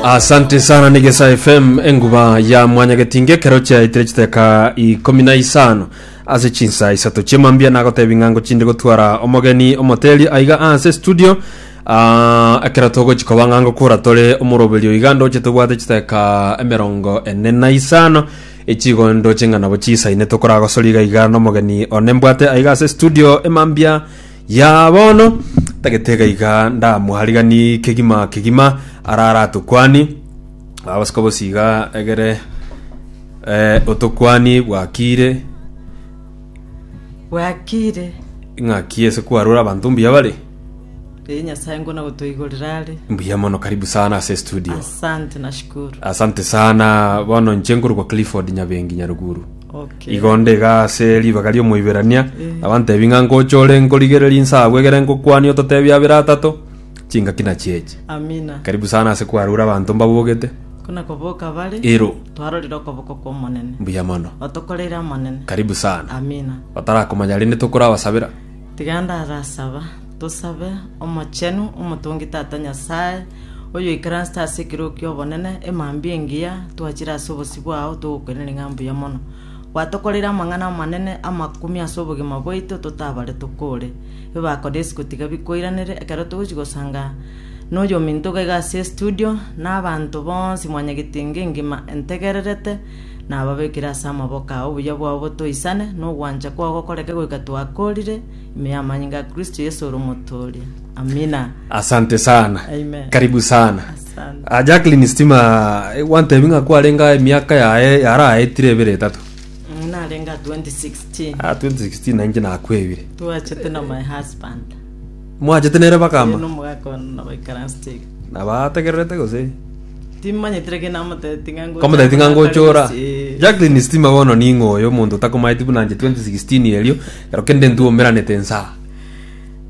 asante sana negesa fm enguba ya mwanyagetinge kero chiaitire chiteka ikomi na isano ase chinsa isato chiemambia nagotebi ng'ango chinde gotwara omogeni omoteli aiga ase studio Ah, ekero togochi koba ng'ango kura tore omoroberio iga ndoche tobwate chiteka emerongo ene na isano echigo ndoche ng'a nabo chisaine tokoragosori iga iga nomogeni one mbwate aiga ase studio emambia Ya bono, tagete iga iga ndamwarigani kegima kegima, arare atokwani aa bosi kobosi iga egere eh, otokwani bwakire bwakire ng'aki ase kwarora abanto mbuya bare ee nyasaye ngona gotoigorera are mbuya mono karibu sana ase studio asante nashukuru asante sana bono nche nkorokwa clifford nyabengi nyaruguru Igo onde iga ase ribaga ri'Omoiberania abantebi ng'a ngocha ore nkorigereria inse agwo egere ngokwanie ototebia abere atato chingaki nachio echi. Amina. Karibu sana ase kwarure abanto mbabogete. Kona koboka bare. Ero. Twarorire okoboko kw'Omonene. Mbuya mono. Otokoreire amanene. Karibu sana. Amina. Batarakomanya rende tokorabasabera. Tiga ndarasaba, tosabe. Omochenu, omotongi Tata Nyasae, oyoikaransete ase ekero ki'obonene, emambia engiya twachire ase obosio bwao togokwenenia ng'a mbuya mono. Gwatokoreire amang'ana amanene amakumia ase obogima bwaito totabaretwe kore. Ebako na isiko tiga bikoiranere ekero togochi gosanga noyominto iga iga ase estudio, na abanto bonsi mwanyagetie ng'engima entegererete, nababekire ase amaboko ao obuya bwabo botoisane, na ogwancha kwao gokoreke goika twakorire, ime y'amanyinga ya Kristo Yesu ore omotooria. Amina. asante sana Amen. karibu sana Asante. Ah, jacklin stima eh, gwantebi ng'a kwarenga emiaka yaye yaraetire ebere etato Mm, narenga 2016 Ah, 2016 nainche nakwebire twachete na my husband mwachete nere Eno bakama omogaka ono nabaikaransi Nabategererete gose? Timomanyeti reke namoteeti ng'a ngocha Komoteti ng'a koba atari ngochora. gose, ee. Jacqueline Stima bono ning'o oyo omonto otakomaeti buna nche 2016 erio ero kende ntwomeranete nsa.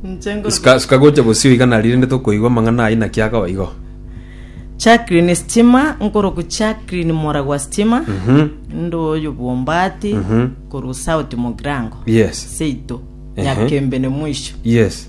Inche nkoroka- Suka suka gocha bosio iga nari rende tokoigwa amang'ana ayio naki akaba igo. Jacqueline Stima nkorokwa Jacqueline moragwa Stima. Mhm. Inde oyo bwombati Mhm. korwa South Mogirango. Yes. Seito. Ehe. Nyakembene mwisho. Yes.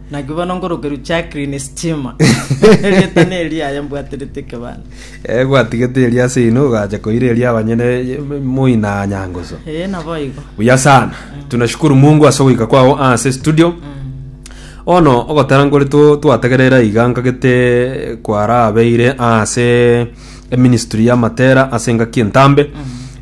Naki bono nkorokerwa Jacqueline Stima, erieta neria aye mbwaterete ekebanda. Eh, gwatigete eria ase ino ogacha koira eria abanyene moina nyangusu Ee, naboigo. buya sana tunashukuru mungu ase ogoika kwao ase studio ono ogotara nkore to- twategerera iga nkagete kwarabeire ase eministry y'amatera ase engaki entambe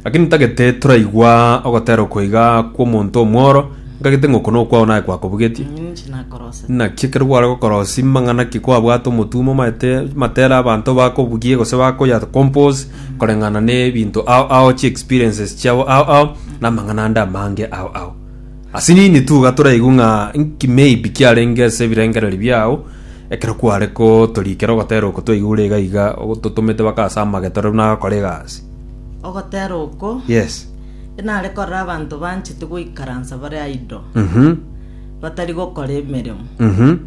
lakini ntagete toraigwa ogotera okoiga kw'omonto omworo ntagete ng'a oko nokwao naye kwakobugetie Ninchi nakorose. naki ekero gware gokorosi mang'ana ki kwabwate omotumo maete matera abanto bakobugie gose bakoya compose koreng'ana na ebinto ao ao chi experiences chiabo ao ao na amang'ana ande amange ao ao ase nini tu iga toraigwe ng'a nki maybe kiarenge ase ebirengereri biao Ekero kware gotorikera ogotera oko twaigure iga iga ototomete baka ase amageto rero nagakora egasi. Ogotera oko Yes. inare korora abanto banchete goikaransa bare idle, Mhm. batari gokora emeremo. Mhm.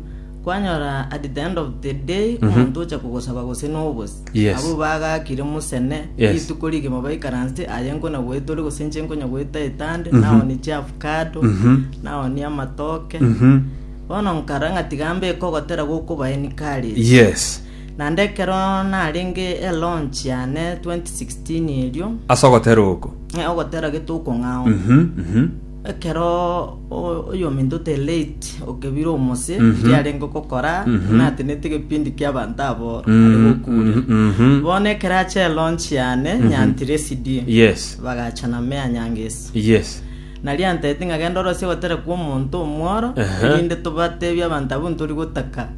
Kwanyora at the end of the day omonto ocha kogosaba gose nobosi. Yes. Abwo bagakire mosene, Yes. rituko rigima baikaransete, aye nkona goeta ore gose inche nkonya goeta etande, naonie chiavocado, Mhm. naonie amatoke. Mhm. Bono nkara ng'a tiga mbeke ogotera gw'okobaeni kare ime. Yes. Naende ekero narenge elaunch yane 2016 erio, Ase ogotera oko. eh, ogotera gete okong'ao, Mhm, mhm. ekero o- oyominto ote late okebire omose riria arenge gokora natenete egepindi kia abanto aboro ari gokuria Mhm. bono ekero ache elaunch yane nyantire esidi Yes. bagachana meya nyangeso Yes. Narianterete ng'a genda orosie ogotera kw'omonto omworo, erinde tobateebie abanto abwo ntori gotaka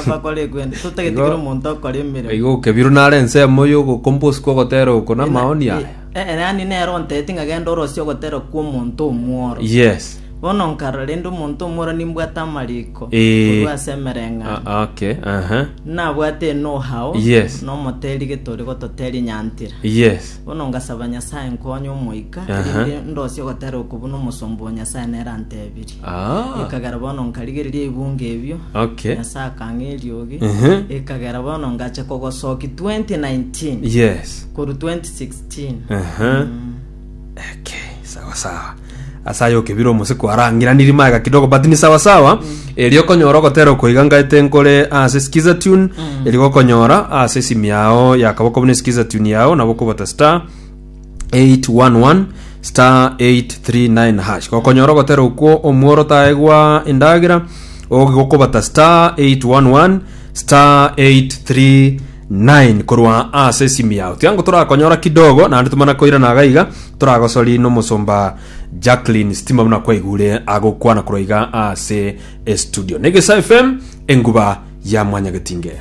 bakore ekwenda, totagetigera omonto okora emeremo. Igo okebirwe nare ensemo y'ogokomba ase kw'ogotera oko namaoni aya. Eh, yaani nere onterete ng'a genda orosie ogotera kw'omonto omworo. Yes. Bono nkarora rende omonto omworo nimbwate amariko Eh. korwa ase emereng'anio. Ah, okay. Aha. Nabwate enohao Yes. nomoteeri getore gototeria nyantira. Yes. Bono ngasaba Nyasae nkonye Omoika, Aha. erinde ndosie ogotera oko buna omosomba o Nyasae nere antebirie. Ah. Ekagera bono nkarigereria ebunga ebio, Okay. Nyasae akang'a eriogi, Mhm. ekagera bono ngacha kogosoki 2019 Yes. koru 2016. Aha. Mm. Okay. Sawa sawa. ase aye okebire omosiko arangiraniri maega kidogo but ni sawa sawa eri okonyora ogotera okoiga ngaete nkore ase skiza tune eri gokonyora ase esimi yao yakaboko buna skiza tune yao nabo okobata star 811 star 839 hash gokonyora ogotera okwo omworo taegwa endagera ogi gokobata star 811 star 83 9 korwa aase esimi yao tiango torakonyora kidogo naende tomana koirana aga iga toragosori nomosomba jacklin stima buna kwaigure agokwana korwa iga aase estudio negesaa fm enguba ya mwanyagetinge